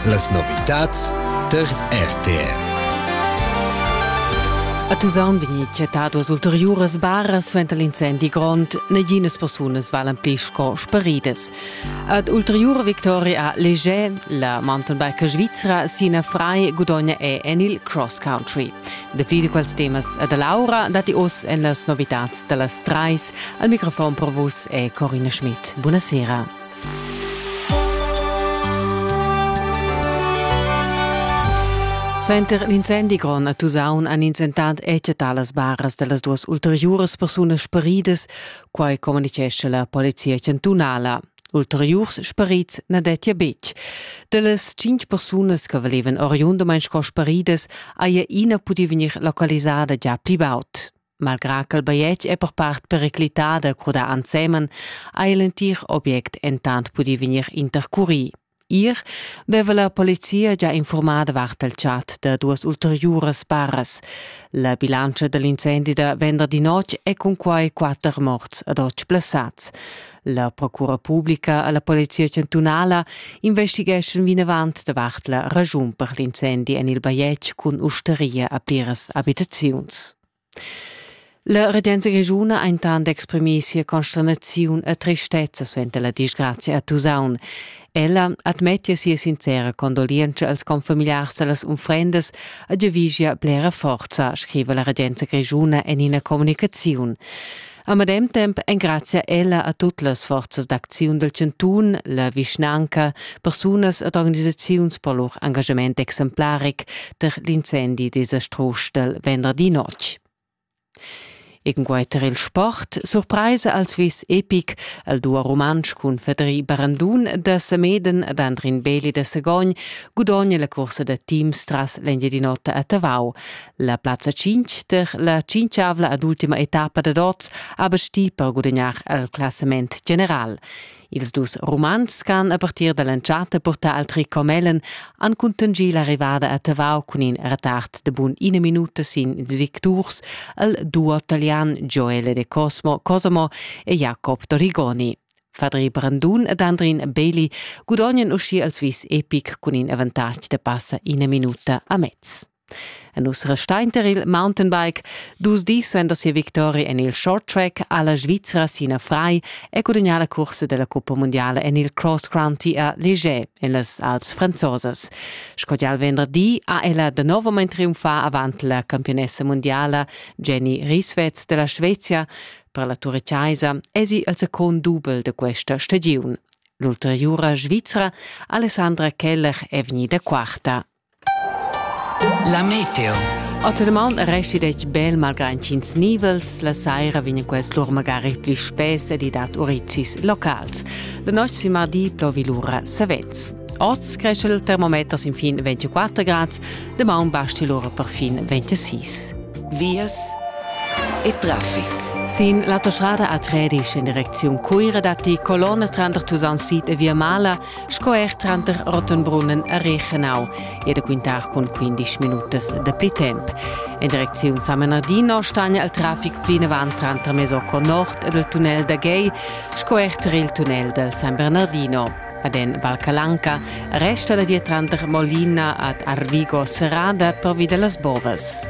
Las novitads tar RTR. A Tusaun vegni chattadas ulteriuras baras suenter l'incendi grond. Neginas persunas valan pli sco sparidas. Ad ulteriura victoria a Leger, la mountainbiker svizra Sina Frei gudogna è en il cross country. Dapli di quels temas a da Laura dati oz en las novitads da las trais. Al microfon per vus è Corina Schmidt. Buonasera. Suenter l'incendi grond a Tusaun han ins entant etgetà las baras da las duas ulteriuras persunas sparidas, quai communitgescha la polizia chantunala. Ulteriurs sparids na dettia betg. Da las cinq persunas che valevan oriundamain sco sparidas haja ina pudì vegnir localisada già pli baud. Malgrà ch'el bajetg è per part periclità da crudar ensemen, ha il entir object entant pudì vegnir intercurì. Ir veva la polizia già infurmà davart il chat da duas ulteriuras paras. La bilantscha dell'incendi da venderdi notg è cunquai quatter morts ed otg blessads. La procura publica alla polizia chantunala investigeschan vinavant davart la ragiun per l'incendi en il bajetg cun ustaria a pliras abitaziuns. La regenza grischuna ha intant exprimì sia consternaziun e tristezza suenter la disgrazia a Tusaun. Ella admettia sia sincera condolienza als confamiliars da las unfrendas e giavischia blera forza, scriva la regenza grischuna en ina communicaziun. A medem temp engrazia ella a tut las forzas d'acziun del Cantun, la vischnanca, persunas ed organisaziuns per lur engagement exemplaric per l'incendi desastrus del venderdi notg. Ingueiter il sport, surpraisa al Swiss Epic, al duo rumantsch cun Federi Barandun da Semeden ed Andrin Beli da Sagogn, gudogna la cursa da teams tras l'Engiadin'Ota a Tavau. La plazza 5 der la cinchavla ad ultima etappa dad oz ha basti per gudagnar al classament general. Ils dus Rumantschs han a partir dall'entschatta purtà al tricot mellen han contingì l'arrivada a Tavau cun in retard de bun ina minuta sin ils victurs al duo italian Joele De Cosmo Cosimo e Jacob Dorigoni. Fadri Brandun ed Andrin Bailey gudognan uschi al Swiss Epic cun in avantatg da passa ina minuta a mezz. Nus restainter il mountainbike dus dis suenter sia victoria en il short track alla Svizzera Sina Frei e gudagnà la cursa della Cuppa Mondiale en il cross county a Léger en las Alps franzosas. Sco già il venerdì ha ella da nuovament triumfà avant la campionessa mondiala Jenny Rieswetz della Svezia. Per la Ture Chiesa è sie il second dubel de questa stagione. L'ulteriura Svizzera Alessandra Keller è vegnida quarta. La meteo. Ottermaun resti detg bel malgrad ch'ins nivels la saira vegn quels lur magari pli spess ed i dat urizis locals. La notte si mardi plovi lura savets. Oz cresce il termometer sin fin 24 grad, de maun basti lura per fin 26. Vias e traffic. Sin l'autostrada a Tredisch in direcziun Cuira datti colonne tranter Tusaun Sid e Via Mala sco er tranter Rottenbrunnen e Reichenau. E da quintar cun 15 minutas de pli temp. En direcziun Samenardino stagna il traffic plinavant tranter Mesocco Nord ed il tunnel da Gay, sco er tar il tunnel del San Bernardino. Ad en Valcalanca resta la via tranter Molina ad Arvigo Serrada pervi de las bovas.